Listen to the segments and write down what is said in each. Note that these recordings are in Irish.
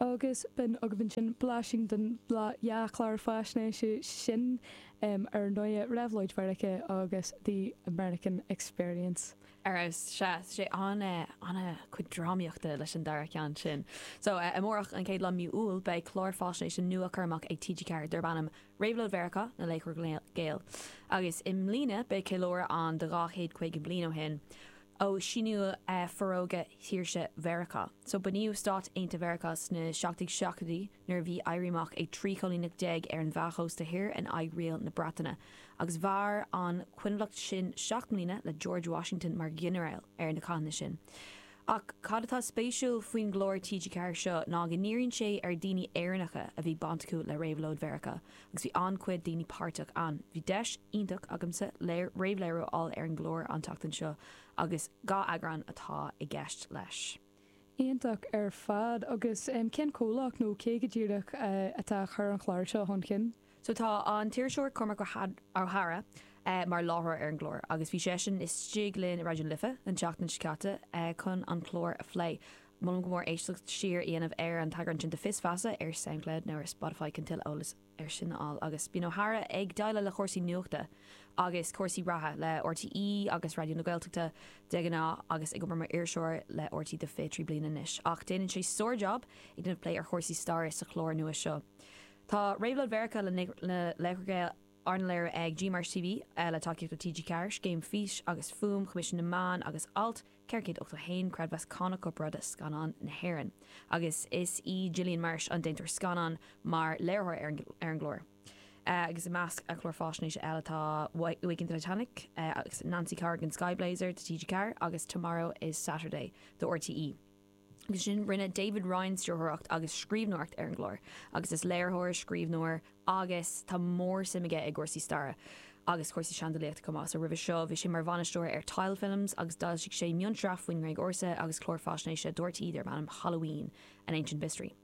agus b'in agaibh ansin blaisín den dá chlár faisnéise sin ar ndóigh, Réabhlóid Mheiriceá agus The American Experience. Ara, sea, sé an an-chuid drámaíochta leis an dara ceann sin. So, amárach, an chéad lá Mí Iúil, beidh clár faisnéise nua curtha amach ag TG4 darb ainm Réabhlóid Mheiriceá, Na Laochra Gael. Agus i mbliana beidh ceiliúradh ann de dhá chéad caoga bliain ó shin. ó síníodh Forógra Saoirse Mheiriceá. So bunaíodh Stáit Aontaithe Mheiriceá sna seacht déag seachtóidí nuair a bhí éirí amach ag trí choilíneacht déag ar an dhá chósta thoir in aghaidh riail na Breataine, agus mhair an choinbhleacht sin seacht mbliana le George Washington mar ghinearál ar na cathanna sin. Ach cad atá spéisiúil faoin gclár TG4 seo ná go ndíríonn sé ar dhaoine Éireannacha a bhí baint acu le Réabhlóid Mheiriceá, agus bhí an-chuid daoine páirteach ann. Bhí deis iontach agamsa réamhléiriú a fháil ar an gclár an tseachtain seo agus dhá eagrán atá i gceist leis. Iontach ar fad. Agus cén comhlacht nó cé go díreach atá a chur an chláir seo chun chinn? So tá an t-iriseoir Cormac Ó hEadhra mar láithreoir ar an gclár agus bhí seisean istigh linn i Raidió na Life an tseachtain seo caite chun an clár a phlé. Molaim go mór éisteacht siar a dhéanamh ar an t-eagrán sin de Fios Feasa ar Soundcloud nó ar Spotify chun tuilleadh eolas air sin a fháil agus bíonn Ó hEadhra ag déileáil le cúrsaí nuachta agus cúrsaí reatha le RTÉ agus Raidió na Gaeltachta de ghnáth agus ag obair mar iriseoir le RTÉ do 23 bliain anois ach déanann sé sár-jab ag déanamh plé ar chúrsaí staire sa chlár nua seo Tá Réabhlóid Mheiriceá, Na Laochra Gael arna léiriú ag G Marsh TV le tacaíocht ó TG4, Scéim Fís agus Fuaim, Coimisiún na Meán agus Alt. 481 creidmheas cánach corparáide Scannán na hÉireann agus is í Gillian Marsh an déantóir scannán mar léiritheoir ar an gclár agus i measc a clár faisnéise eile tá Waking Titanic agus Nancy Corrigan Sky Blazer do TG4 agus Tomorrow is Saturday do RTÉ. Agus ansin rinne David Ryan stiúrthóireacht agus scríbhneoireacht ar an gclár agus is léiritheoir, scríbhneoir agus tá mór-suim aige i gcúrsaí staire agus cúrsaí seandálaíochta chomh maith. So roimhe seo bhí sé mar bhainisteoir ar Tile Films agus d'fhoilsigh sé mionsraith faoin nGréig Ársa agus clár faisnéise do RTÉ darb ainm Halloween, An Ancient Mystery.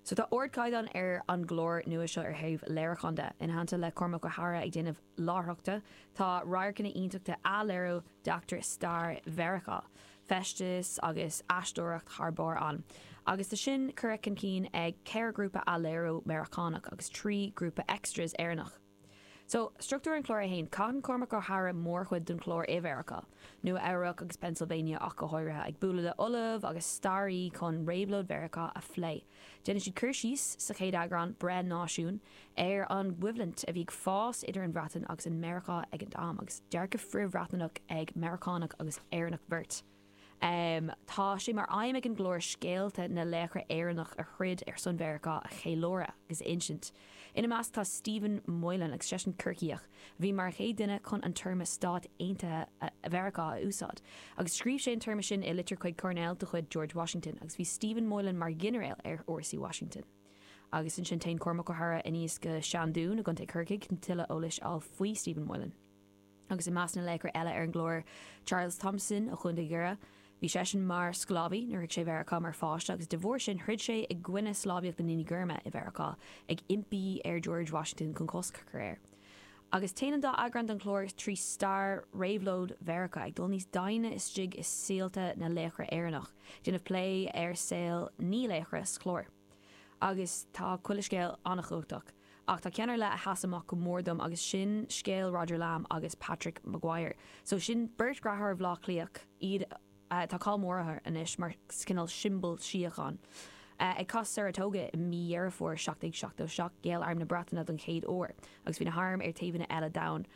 So tá ardchaighdeán ar an gclár nua seo ar thaobh léiriúcháin de. Ina theannta le Cormac Ó hEadhra ag déanamh. láithreachta. Tá radharcanna iontacha d'athléiriú d'eachtraí stair Mheiriceá, feisteas agus aisteoireacht thar barr ann, agus tá sin curtha chun cinn ag ceithre ghrúpa athléiriú Meiriceánach agus trí ghrúpa extras Éireannach. So, struchtúr an chláir é féin. Caitheann Cormac Ó hEadhra mórchuid den chlár i Mheiriceá, Nua Eabhrac agus Pennsylvania ach go háirithe, ag bualadh le ollamh agus staraí chun réabhlóid Mheiriceá a phlé. Déanann siad cur síos, sa chéad eagrán, Breith Náisiún, ar an gcoimhlint a bhí ag fás idir an Bhreatain agus an Meiriceá ag an am, agus dearcadh frith-Bhriotanach ag Meiriceánach agus Éireannach beirt. Tá sé mar aidhm ag an gclár scéalta na laochra Éireannach a throid ar son Mheiriceá a cheiliúradh agus a insint. Ina measc tá Stephen Moylan agus seisean Corcaíoch a bhí mar an chéad duine chun an téarma Stáit Aontaithe Mheiriceá a úsáid agus scríobh sé an téarma sin i litir chuig Coirnéal de chuid George Washington agus bhí Stephen Moylan mar ghinearéal ar fhórsaí Washington. Agus ansin téann Cormac Ó hEadhra anuas go Seandún i gContae Corcaigh chun tuilleadh eolais a fháil faoi Stephen Moylan. agus i measc na laochra eile ar an gclár, Charles Thomson ó Chontae Dhoire. Bhí seisean mar sclábhaí nuair a shroich sé Mheiriceá mar pháiste agus de bharr sin throid sé i gcoinne sclábhaíocht na ndaoine gorma i Mheiriceá, ag impí ar George Washington chun cosc a chur air. Agus téann an dá eagrán den chlár trí stair réabhlóid Mheiriceá, ag dul níos doimhne istigh i saolta na laochra Éireannach, ag déanamh plé ar saol naoi laochra sa chlár. Agus tá chuile scéal an-chumhachtach. Ach tá ceann ar leith a sheas amach go mór dom agus sin scéal Roger Lamb agus Patrick Maguire. So sin beirt dreatháir ó Bhleá Cliath, agus tá cáil mór ortha anois mar cineál siombal síocháin. Ag Cath Saratoga i mí Dheireadh Fómhair 1777 ghéill arm na Breataine don chéad uair agus bhí na hairm ar taobhanna eile d'abhainn.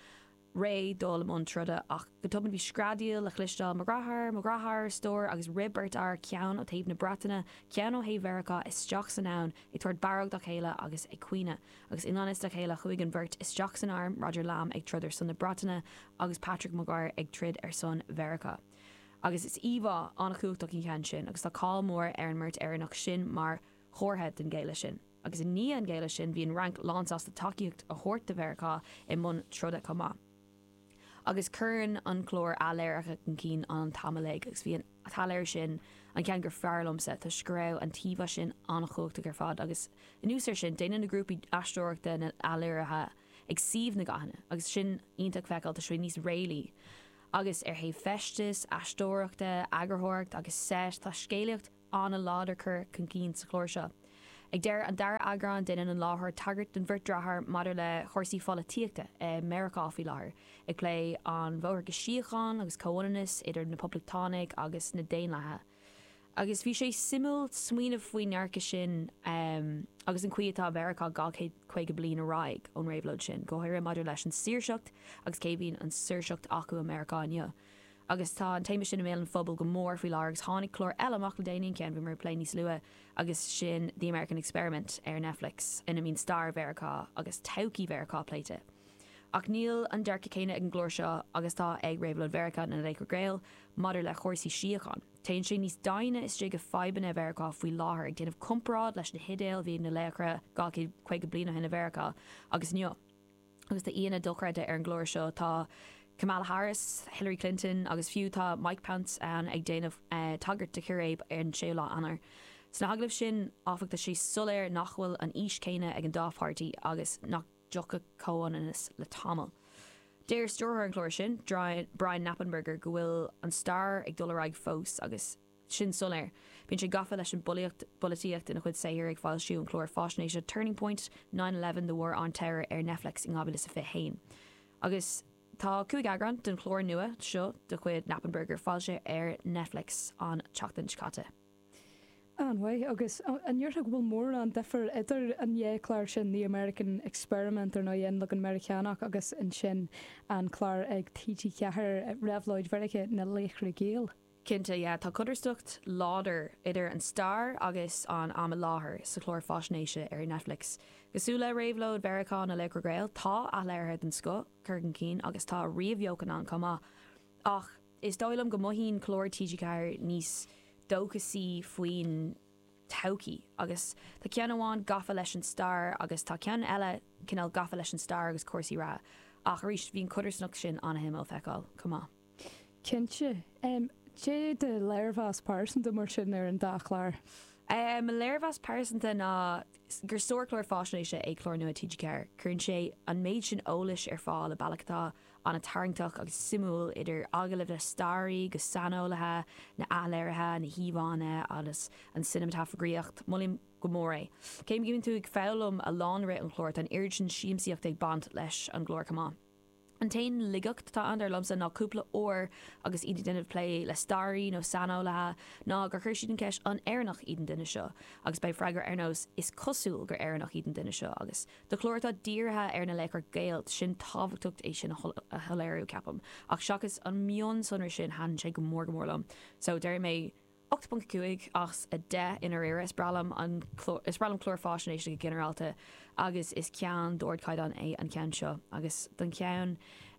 réidh dul i mbun troda, ach go tobann bhí screadaíl le chloisteáil, Mo dhreatháir! Mo dhreatháir! a stór, agus rith beirt fhear, ceann ó thaobh na Breataine, ceann ó thaobh Mheiriceá, isteach san abhainn, ag tabhairt barróg dá chéile agus ag caoineadh. Agus i ngan fhios dá chéile chuaigh an bheirt isteach san arm, Roger Lamb ag troid ar son na Breataine agus Patrick Maguire ag troid ar son Mheiriceá. Agus is íomhá an-chumhachtach í an ceann sin agus tá cáil mhór ar an mbeirt Éireannach sin mar chomhartha den ghéilleadh sin. agus i ndiaidh an ghéilleadh sin bhí an Fhrainc lánsásta tacaíocht a thabhairt do Mheiriceá i mbun troda chomh maith. Agus cuireann an clár athléirithe chun cinn an t-am ar fad, agus bhí an t-athléiriú sin an ceann gur fearr liomsa, toisc go raibh an t-íomhá sin an-chumhachtach ar fad, agus anuas air sin, déanann na grúpaí aisteoireachta na n-athléirithe ag suíomh na gcathanna, agus sin iontach feiceáil toisc go bhfuil sé níos réalaí, agus ar thaobh feistis, aisteoireachta, eagarthóireacht agus seit, tá scéalaíocht. an-láidir cur chun cinn sa chlár seo. Ag deireadh an dara eagrán déanann an láithreoir tagairt don bheirt dreatháir maidir le chúrsaí pholaitíochta i Meiriceá faoi láthair, ag plé an bhóthar go síocháin agus comhionannas idir na Poblachtánaigh agus na Daonlathaigh. Agus bhí sé suimiúil smaoineamh faoin ndearcadh sin agus an chaoi atá Mheiriceá dhá chéad caoga bliain ar aghaidh ón réabhlóid sin, go háirithe maidir leis an saoirseacht agus cé a bhíonn an saoirseacht acu i Meiriceá inniu. agus tá an téama sin i mbéal an phobail go mór faoi láthair agus tháinig clár eile amach le déanaí, an ceann a bhí mé ag plé níos luaithe agus sin The American Experiment ar Netflix ina mbíonn stair Mheiriceá agus todhchaí Mheiriceá pléite. Ach níl an dearcadh céanna ag an gclár seo agus atá ag Réabhlóid Mheiriceá na Laochra Gael maidir le chúrsaí síocháin. Téann sé níos doimhne istigh i fadhbanna Mheiriceá faoi láthair, ag déanamh comparáid leis na hidéil a bhí ag na laochra dhá céad caoga bliain ó shin i Mheiriceá agus inniu. Agus tá aíonna dochreidte ar an gclár seo, tá Kamala Harris, Hillary Clinton agus fiú tá Mike Pence ann ag déanamh tagairt do chiréib ar an 6ú lá Eanáir. Sna hagallaimh sin áfach tá sé soiléir nach bhfuil an fhís chéanna ag an dá pháirtí agus nach dtiocfaidh comhionannas le tamall. Deir stiúrthóir an chláir sin, Brian Knappenberger go bhfuil an stair ag dul ar aghaidh fós agus, sin soiléir. Bíonn sé gafa leis an bpolaitíocht ina chuid saothar, ag foilsiú an chláir fáisnéise Turning Point, Nine Eleven, The War on Terror ar Netflix in 2021. Agus tá cúig eagrán den chlár nua seo de chuid Knappenberger foilsithe ar Netflix an tseachtain seo caite. An-mhaith. Agus an ndéarfá go bhfuil mórán difir idir an dhá chlár sin, The American Experiment, ar ndóigh, an leagan Meiriceánach, agus ansin an clár ag TG4, Réabhlóid Mheiriceá, Na Laochra Gael? Cinnte, yeah, tá codarsnacht láidir idir an stair agus an am i láthair sa chlár faisnéise ar Netflix. Cosúil le réabhlóid Mheiriceá na Laochra Gael, tá athléirithe den scoth curtha chun cinn agus tá ríomhbheochan ann chomh maith. Ach is dóigh liom go mothaíonn cláir TG4 níos dóchasaí faoin todhchaí agus tá ceann amháin gafa leis an stair agus tá ceann eile cineál gafa leis an stair agus cúrsaí reatha ach arís bhí an codarsnacht sin an-suimiúil a fheiceáil chomh maith. Cinnte. Cad é do léirmheas pearsanta mar sin ar an dá chlár? Mo léirmheas pearsanta ná gur sárchlár fáisnéise é clár nua TG4. Cuireann sé an méid sin eolais ar fáil i bealach atá an-tarraingteach agus suimiúil, idir agallaimh le staraithe agus saineolaithe, na athléirithe, na híomhánna agus an cineamatagrafaíocht. Molaim go mór é. Cé go mbíonn tú ag foghlaim a lán i rith an chláir, tá an oiread sin siamsaíochta ag baint leis an gclár chomh maith. An t-aon laigeacht atá ann, dar liomsa, ná cúpla uair agus iad ag déanamh plé le staraithe nó saineolaithe ná gur chuir siad an cheist 'An Éireannach iad an duine seo? agus beidh freagra ar nós 'Is cosúil gur Éireannach iad an duine seo' agus do chlár atá dírithe ar na laochra Gael tá sé tábhachtach é sin a shoiléiriú, ceapaim, ach seachas an mionsonra sin thaitin sé go mór go mór liom so déarfaidh mé. 8.5 as 10 i ndáiríre, is breá liom an clár, is breá liom cláir fáisnéise go ginearálta agus is ceann d'ardchaighdeán é an ceann seo. Agus don cheann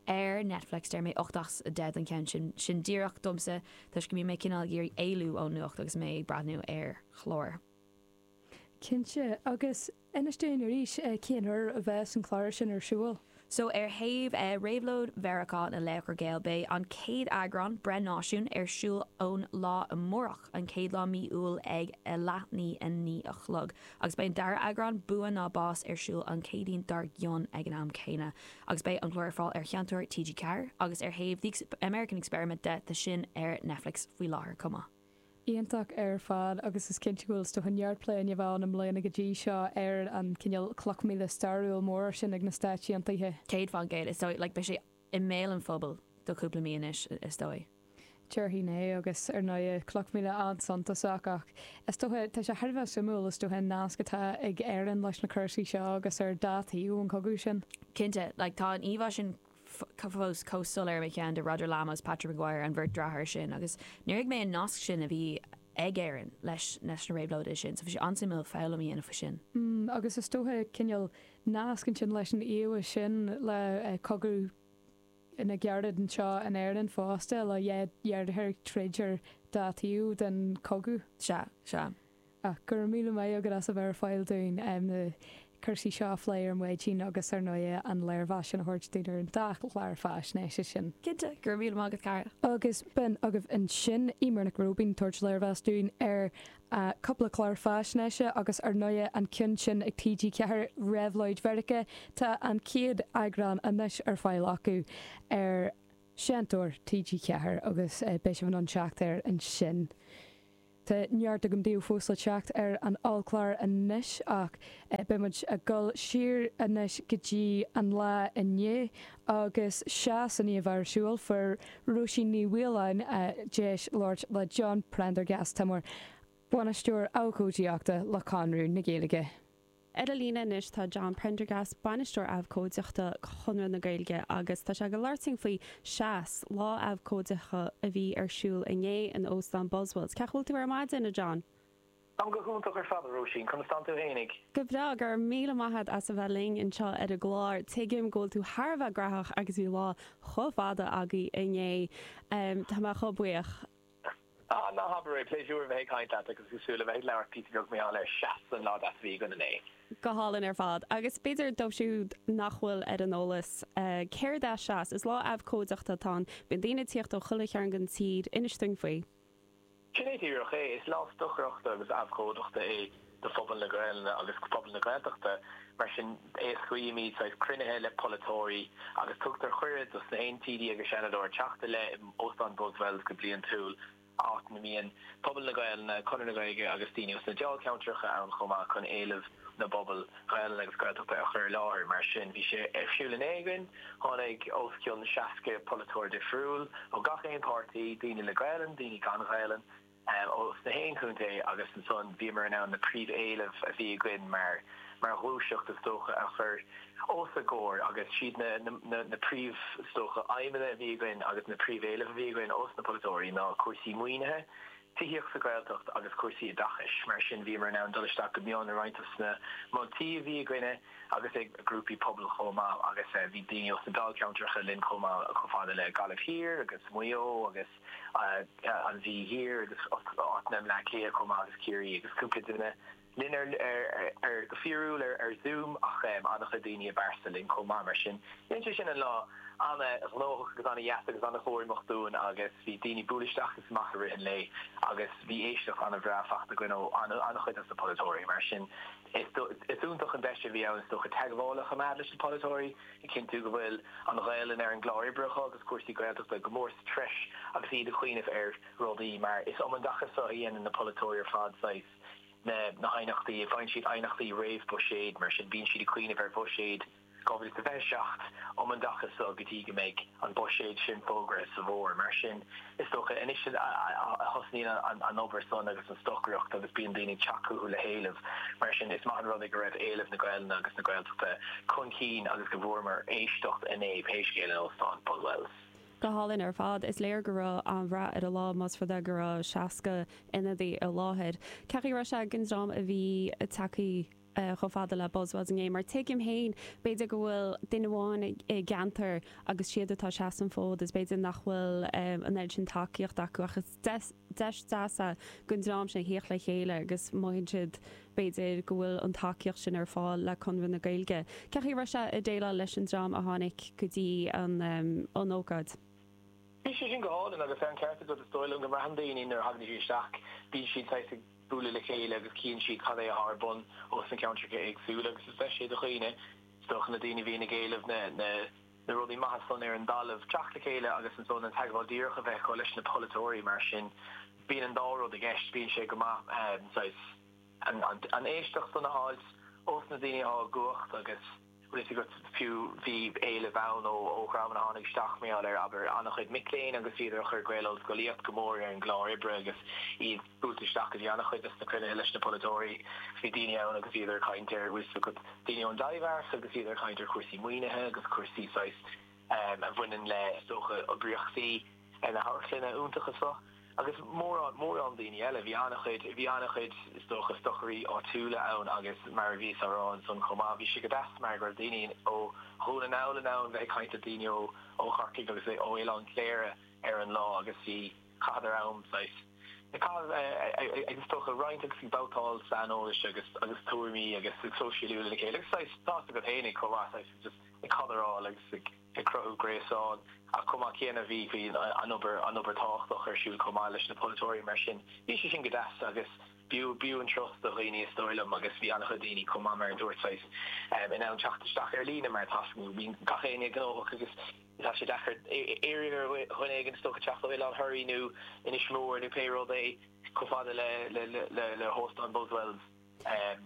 ar Netflix deir mé 8 as 10 don cheann sin, sin díreach domsa toisc go mbíonn mé cineál ag iarraidh éalú ón nuacht agus mé ag breathnú ar chlár. Cinnte. Agus inis dúinn arís cén uair a bheas an clár sin ar siúl. So ar thaobh Réabhlóid Mheiriceá na Laochra Gael beidh an chéad eagrán, Breith Náisiún, ar siúl ón lá amárach, an chéad lá mí Iúil ag a leathnaoi a naoi a chlog. Agus beidh an dara heagrán, Bua nó Bás, ar siúl an Chéadaoin dár gcionn ag an am céanna. Agus beidh an clár ar fáil ar Sheinnteoir TG4. Agus ar thaobh The American Experiment de, tá sin ar Netflix faoi láthair chomh maith. Iontach ar fad, agus is cinnte go bhfuil is dóiche neart plé i ndiaidh a bheith ann i mbliana go dtí seo ar an cineál cloch mhíle stairiúil mór sin ag na Stáit Aontaithe. Céad fán gcéad, is dóigh, like beidh sé i mbéal an phobail do chúpla mí anois, is dóigh. Déarfainn é, agus ar ndóigh, cloch mhíle an-suntasach, ach is dócha, tá sé thar a bheith suimiúil, is dócha, an nasc atá ag Éirinn leis na cúrsaí seo, agus ar dá thaobh ón gcogadh sin. Cinnte, like tá an íomhá sin fós chomh soiléir i mo cheann de Roger Lamb is Patrick Maguire, an bheirt driotháir sin, agus níor thuig mé an nasc sin a bhí ag Éirinn leis na réabhlóidí sin, so bhí sé an-suimiúil foghlaim a dhéanamh faoi sin. Mm, agus is dócha cineál nasc ansin leis an íomhá sin le cogadh na gcarad anseo in Éirinn fosta, le deartháir ag troid ar dá thaobh den chogadh. Sea, sea. Ach go raibh míle maith agat as a bheith ar fáil dúinn na cúrsaí seo a phlé ar maidin agus ar ndóigh an léirmheas sin a thabhairt dúinn ar an dá chlár faisnéise sin. Cinnte, go raibh míle maith agat cara. Agus b'in agaibh ansin Eimear Nic Róibín ag tabhairt léirmheas dúinn ar cúpla clár faisnéise agus ar ndóigh an ceann sin ag TG4, Réabhlóid Mheiriceá, tá an chéad eagrán anois ar fáil acu ar Seinnteoir TG4 agus beidh sibh in ann teacht air ansin. Tá neart againn daoibh fós le teacht ar an ollchlár anois ach beidh muid ag dul siar anois go dtí an lá inné agus seo is a ghnáth ar siúl fuair Róisín Ní Mhaoláin deis labhairt le John Prendergast, atá mar Bhainisteoir Abhcóideachta le Conradh na Gaeilge. Ar an líne anois tá John Prendergast, Bainisteoir Abhcóideachta Chonradh na Gaeilge, agus tá sé ag goil a labhairt linn faoi 'Seas', lá abhcóideachta a bhí ar siúl inné in Óstán Buswells. Cén chaoi a bhfuil tú ar maidin, a John? Táim go hiontach ar fad, a Róisín. Conas tánn tú fhéinig? Go breá, go raibh míle maith agat as a bheith linn anseo ar an gclár. Tuigim go bhfuil tú thar a bheith graitheach agus bhí lá chomh fada agaibh inné. Tá mé chomh buíoch. Ah, ná habair é! Pléisiúr a bheith ag caint leat agus ag súil le bheith ag labhairt píosa beag níos mó ar Seas an lá deas a bhí againn inné. Go hálainn ar fad. Agus b'fhéidir dóibh siúd nach bhfuil ar an eolas céard é Seas, is lá abhcóideachta atá ann. Bíonn daoine ag tíocht ó chuile chearn den tír. Inis dúinn faoi. Sin é díreach é. Is lá stocaireachta agus abhcóideachta é. do phobal na Gaelainne agus do phobal na Gaeltachta. Mar sin, éascaímid saghas cruinnithe le polaiteoirí agus tugtar cuireadh dos na haon TD agus Seanadóir teacht i leith in Óstán Buswells go bliantúil, áit ina mbíonn pobal na Gaelainne, Conradh na Gaeilge agus daoine as na Dáilcheantracha ann chomh maith chun éilimh na bpobal Gaelainne agus Gaeltachta a chur i láthair. Mar sin, bhí sé ar siúl inné agus, tháinig os cionn 60 polaiteoir difriúil ó gach aon páirtí, daoine le Gaelainn, daoine gan Ghaelainn, ós na haon chontae agus ansan bhíomar in ann na príomh-éilimh a bhí againn mar ghluaiseacht is dócha a chur os a gcomhair agus siad na príomh is dócha aidhmeanna a bhí againn agus na príomh-éilimh a bhí againn ós na polaiteoirí ná cúrsaí maoinithe, tithíocht sa Ghaeltacht agus cúrsaí oideachais. Mar sin bhíomar in ann dul isteach go mion i roinnt dos na moltaí a bhí againne agus ag grúpaí pobail chomh maith agus bhí daoine ós na Dáilcheantracha linn chomh maith chomh fada le Gaillimh Thiar agus Maigh Eo agus an Mhí Thiar agus áiteanna i mBleá Cliath chomh maith agus Ciarraí agus cúpla duine linn ar go fíorúil ar Zoom ach an-chuid daoine i bpearsa linn chomh maith mar sin dhein sé sin an lá an-ghnóthach agus an-dheas agus an-chorraitheach dúinn agus bhí daoine ag bualadh isteach agus amach i rith an lae agus bhí éisteacht an-bhreá faighte againn ó an-chuid dos na polaiteoirí mar sin Is iontach an deis a bhí ann, is dócha, teagmháil a choimeád leis na polaiteoirí, ag cinntiú go bhfuil an Ghaelainn ar an gclár oibre acu agus cúrsaí Gaeltachta go mór sa treis agus iad ag cuimhneamh ar rudaí mar is um an dtaca so a dhéanann na polaiteoirí ar fad saghas na haighneachtaí, faigheann siad aighneachtaí réamh-Bhuiséid, mar sin bíonn siad ag cuimhneamh ar Bhuiséad. 2027 um an dtaca so go dtí go mbeidh an buiséad sin fógraithe sa bhFómhar. Mar sin, is dócha, anois a thosnaíonn an obair san agus an stocaireacht agus bíonn daoine ag teacht chucu le héilimh. Mar sin, is maith an rud é go raibh éilimh na Gaelainne agus na Gaeltachta chun cinn agus go bhfuaireamar éisteacht inné, pé scéal, in Óstán Buswells. Go hálainn ar fad. Is léir go raibh an-rath ar an lá, más rud é go raibh 60 ionadaí i láthair. Cén chaoi a raibh sé ag an dream a bhí ag teacht. chomh fada le Buswells inné, mar tuigim féin, b'fhéidir go bhfuil duine amháin i gceantar agus siad atá ag seasamh an fhóid is b'fhéidir nach bhfuil an oiread sin tacaíocht acu ach is deis deas é don dream sin theacht le chéile agus mothaíonn siad b'fhéidir go bhfuil an tacaíocht sin ar fáil le Conradh na Gaeilge. Cén chaoi a raibh sé ag déileáil leis an dream a tháinig go dtí an ócáid. Bhí sé sin go hálainn agus tá an ceart agat is dóigh liom go mbraitheann daoine nuair a thagann siad isteach bíonn siad saghas ag bualadh le chéile agus chíonn siad cad é atá ar bun ins na ceantracha éagsúla agus is deis é do dhaoine, do na daoine a bhíonn ag éileamh na rudaí maithe san ar an dtalamh, teacht le chéile agus ansan an teagmháil díreach a bheith acu leis na polaiteoirí. Mar sin, bíonn an dá rud i gceist, bíonn sé go maith saghas an éisteacht san a fháilt ós na daoine atá i gcumhacht agus, bhfios agat fiú, bhí éileamh ann ó dhreamanna a tháinig isteach mar gheall ar, abair, an-chuid mic léinn agus iad ag cur Gaelscolaíocht go mór ar an gclár oibre agus iad buailte isteach go dtí an-chuid de na cruinnithe leis na polaiteoirí. Bhí daoine ann agus iad ag caint ar, bhfuil fhios agat, daoine ón dTaibhdhearc agus iad ag caint ar chúrsaí maoinithe agus cúrsaí saghas a bhaineann le, is dócha, oibríochtaí na hamharclainne iontaí seo agus mórán, mórán daoine eile. Bhí an-chuid, bhí an-chuid, is dócha, stocairí áitiúla ann agus mar a bhíos á rá ansan chomh maith, bhí sé go deas mar go raibh daoine ó Dhún na nGall in ann bheith ag caint le daoine ó, ó Chorcaigh agus ó Oileán Chléire ar an lá agus bhí, chaitheadar am, saghas, ag caitheamh, ag, is dócha, roinnt agus ag babhtáil saineolais agus, agus tuairimí agus sóisialú lena chéile agus saghas, tá's agat fhéinig chomh maith, saghas, just. ag cadráil agus ag cruthú gréasán ach chomh maith céanna bhí an obair tábhachtach ar siúl chomh maith leis na polaiteoirí mar sin bhí sé sin go deas agus b'fhiú an turas do dhaoine is dóigh liom agus bhí an-chuid daoine chomh maith mar a dúirt saghas in ann teacht isteach ar líne mar tá's agat tá gach éinne gnóthach agus tá sé deacair iarraidh ar dhuine éigin is dócha teacht ó Oileán Thoraí nó Inis Mór nó pé rud é chomh fada le hóstán Buswells.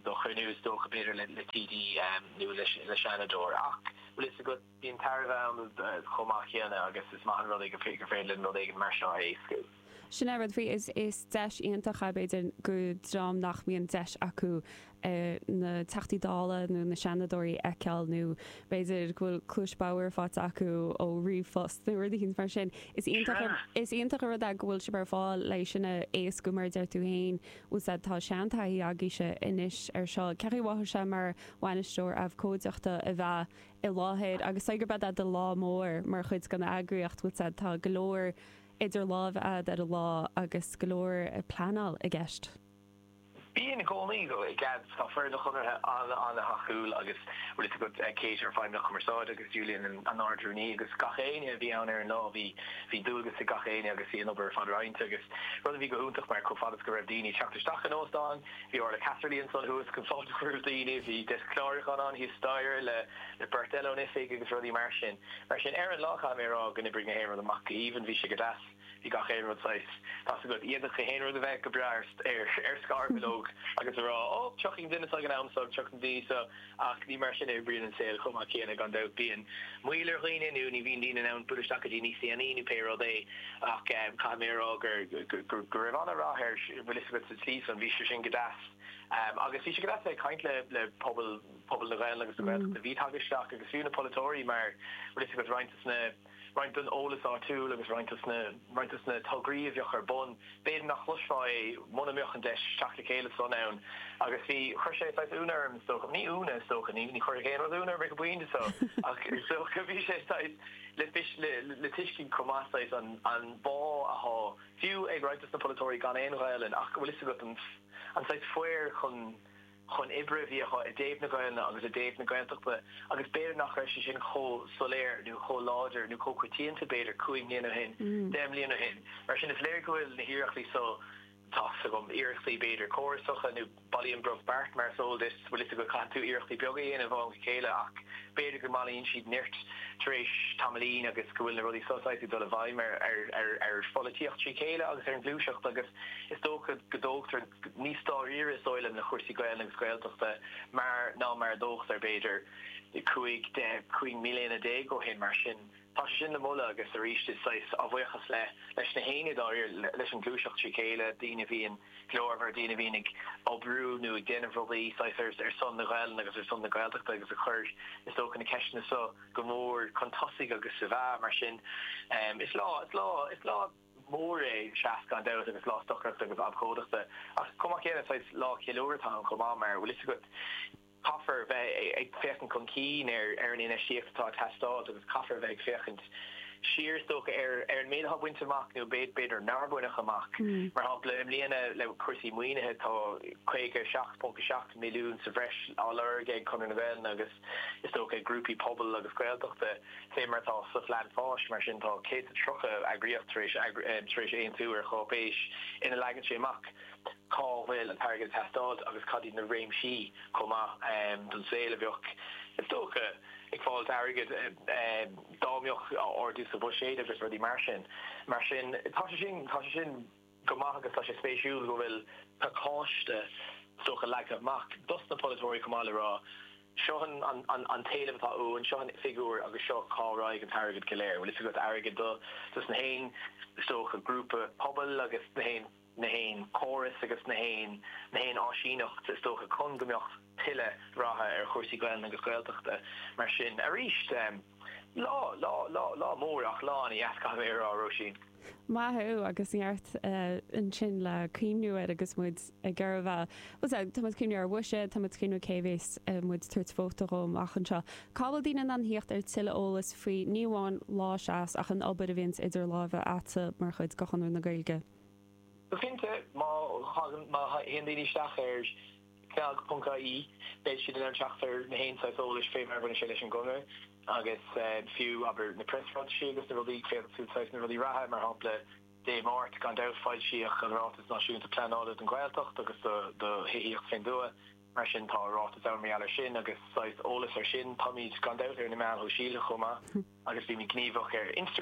do chruinniú, is dócha, b'fhéidir le TD nó le Seanadóir. Ach, bhfuil a fhios agat, bíonn tairbhe ann chomh maith céanna agus is maith an rud é gur féidir linn rud éigin mar seo a éascú. Sin é an rud faoi, is deis iontach é b'fhéidir do dhream nach mbíonn deis acu na Teachtaí Dála nó na Seanadóirí a fheiceáil nó b'fhéidir go bhfuil cluas bhodhar faighte acu ó ríomhphost nó rud éigin mar sin. Is iontach an rud é go bhfuil sibh ar fáil le sin a éascú mar a deir tú féin. Bhuel 'sea tá seantaithí agaibhse anois ar seo, cén chaoi a mhothaigh sé mar bhainisteoir abhcóideachta a bheith i láthair agus sé gurb é do chéad lá mór mar chuid den eagraíocht bhuel 'sea tá go leor idir lámha ad ar an lá agus go leor pleanáil i gceist. Bhi i gcónaí go bhfuil cead Tá foireann an Chonartha an-an-thacúil agus bhfuil fhios agat Kate ár bhFeidhmeannach Cumarsáide agus Julian an tArd-Rúnaí agus gach éinne a bhí ann ar an lá bhí bhí dualgas ag gach éinne agus bhí an obair ar fad roinnte agus rud a bhí go hiontach mar chomh fada is go raibh daoine ag teacht isteach in óstán bhí Orla Casserly ansan thuas chun fáilte a chur roimh daoine bhí deasc clárúcháin ann thíos staighre le le beirt eile ón oifig agus rudaí mar sin mar sin ar an lá caithfidh mé a rá gur oibrigh nach aon rud amach go haoibhinn bhí sé go deas. bhí gach aon rud saghas. Tá's agat, d'fhéadfadh gach aon rud a bheith go breá ar scarbhileog agus a rá, Ó, tiocfaidh an duine seo ag an am seo, tiocfaidh na daoine seo, ach ní mar sin a oibríonn an saol chomh maith céanna, gan dabht. Bíonn moill ar dhaoine, nó ní bhíonn daoine in ann bualadh isteach go dtí níos déanaí, nó pé rud é, ach caithfidh mé a rá go raibh an-rath ar, bhfuil fhios agat, sa tslí san, bhí sé sin go deas. Agus bhí sé go deas a bheith ag caint le pobal, pobal na Gaeilge agus na Gaeltachta, a bhí tagtha isteach, agus fiú na polaiteoirí, mar, bhfuil fhios agat, roinnt de na. roinnt don eolas áitiúil agus roinnt de na tograí a bheadh ar bun, b'fhéidir nach chloisfeá é mura mbeadh an deis teacht le chéile san ann. Agus bhí, chuir sé saghas ionadh orm is dócha, ní hionadh is dócha, ní chuirfeadh aon rud ionadh orm na laethanta so, ach is dócha bhí sé saghas le tuiscint chomh maith saghas an bhá athá fiú ag roinnt de na polaiteoirí gan aon Ghaelainn ach bhfuil fhios agat an saghas cur chun chun oibre a bhí acu i dtaobh na Gaelainne agus i dtaobh na Gaeltachta agus b'fhéidir nach raibh sé sin chomh soiléir nó chomh láidir nó chomh coitianta b'fhéidir cúig mbliana ó shin, deich mbliana ó shin. Mar sin, is léir go bhfuil na hiarrachtaí so, tá a fhios agam, iarrachtaí b'fhéidir córasacha nó bailíonn brobh beart mar is eol duit, bhfuil a fhios agat, caitheann tú iarrachtaí beaga a dhéanamh ó am go chéile ach b'fhéidir go mbailíonn siad neart tar éis tamaillín agus go bhfuil na rudaí so saghas ag dul i bhfeidhm ar pholaitíocht trí chéile agus ar an ghluaiseacht agus Is dócha go dtógtar níos dáiríre is dóigh liom le cúrsaí Gaelainne agus Gaeltachta mar ná mar a tógtaí, b'fhéidir, cúig, deich, cúig mbliana déag ó shin. Mar sin, tá sé sin le moladh agus arís is saghas, á bhuíochas le, leis na haoinne, dáiríre, leis an ghluaiseacht trí chéile, daoine a bhíonn glórmhar, daoine a bhíonn ag oibriú nó ag déanamh rudaí, saghas, ar son na Gaelainne agus ar son na Gaeltachta agus a chuir, is dócha, na ceisteanna seo go mór chun tosaigh agus sa mheá. Mar sin, is lá, is lá, is lá. mór é, Seas, gan dabht, agus lá stocaireachta agus abhcóideachta. Ach chomh maith céanna, saghas lá ceiliúradh atá ann chomh maith, mar, bhfuil fhios agat, caithfear bheith ag féachaint chun cinn ar an infheistíocht atá ag teastáilt agus caithfear bheith ag féachaint siar, is dócha, ar an méid atá bainte amach nó b'fhéidir nár baineadh amach. Mar shampla, i mbliana le cúrsaí maoinithe, tá 57.7 milliún sa bhreis á lorg ag Conradh na Gaelainne agus, is dócha, ag grúpaí pobail agus Gaeltachta. Fé mar atá sa Phlean Fáis, mar sin, tá 130 eagraíocht tar éis aontú ar cháipéis ina leagann sé amach cá bhfuil an t-airgead ag teastáilt agus cad iad na réimsí chomh maith don saol a bheadh, is dócha, ag fáilt airgid dá mbeadh ardú sa bhuiséad agus rudaí mar sin. Mar sin, tá sé sin, tá sé sin. go maith agus tá sé spéisiúil go bhfuil pacáiste stuama leagtha amach dos na polaiteoirí chomh maith le rá seo an t-éileamh atá uainn, seo an figiúr agus seo cá raghaidh an t-airgead go léir. Bhfuil fhios agat, airgead dos na haon is dócha grúpa pobail agus na haon córas agus na haon áisíneacht is dócha chun go mbeadh, tuilleadh ratha ar chúrsaí Gaelainne agus Gaeltachta mar sin. Arís, lá, lá, lá, lá mór ach lá ana dheas caithfidh mé a rá, Róisín. Maith thú agus neart ansin le cuimhniú air agus muid i ngar, bhuel tá, tá muid ag cuimhniú ar bhuiséad, tá muid ag cuimhniú cé bheas muid ag tabhairt vóta dhó amach anseo. Cá bhfuil daoine in ann thíocht ar thuilleadh eolais faoi ní amháin Lá Seas ach an obair a bhíonns idir láimhe agat mar chuid de Chonradh na Gaeilge? Go cinnte, má thagann, má théann daoine isteach ar. CnaG.ie, Beidh siad in ann teacht ar gach aon saghas eolais fé mar a bhaineann sé leis an gConradh agus fiú, abair, na preasráitisí agus na rudaí, féadfaidh siad saghas na rudaí reatha, mar shampla, Dé Máirt, gan dabht, foilsíodh an Ráiteas Náisiúnta Pleanála don Ghaeltacht agus do Thithíocht fén dtuath, mar sin tá ráiteas ann mar gheall ar sin agus saghas eolas ar sin. Táimíd, gan dabht, ar na meáin shóisialtha chomh maith agus bímíd gníomhach ar Instagram.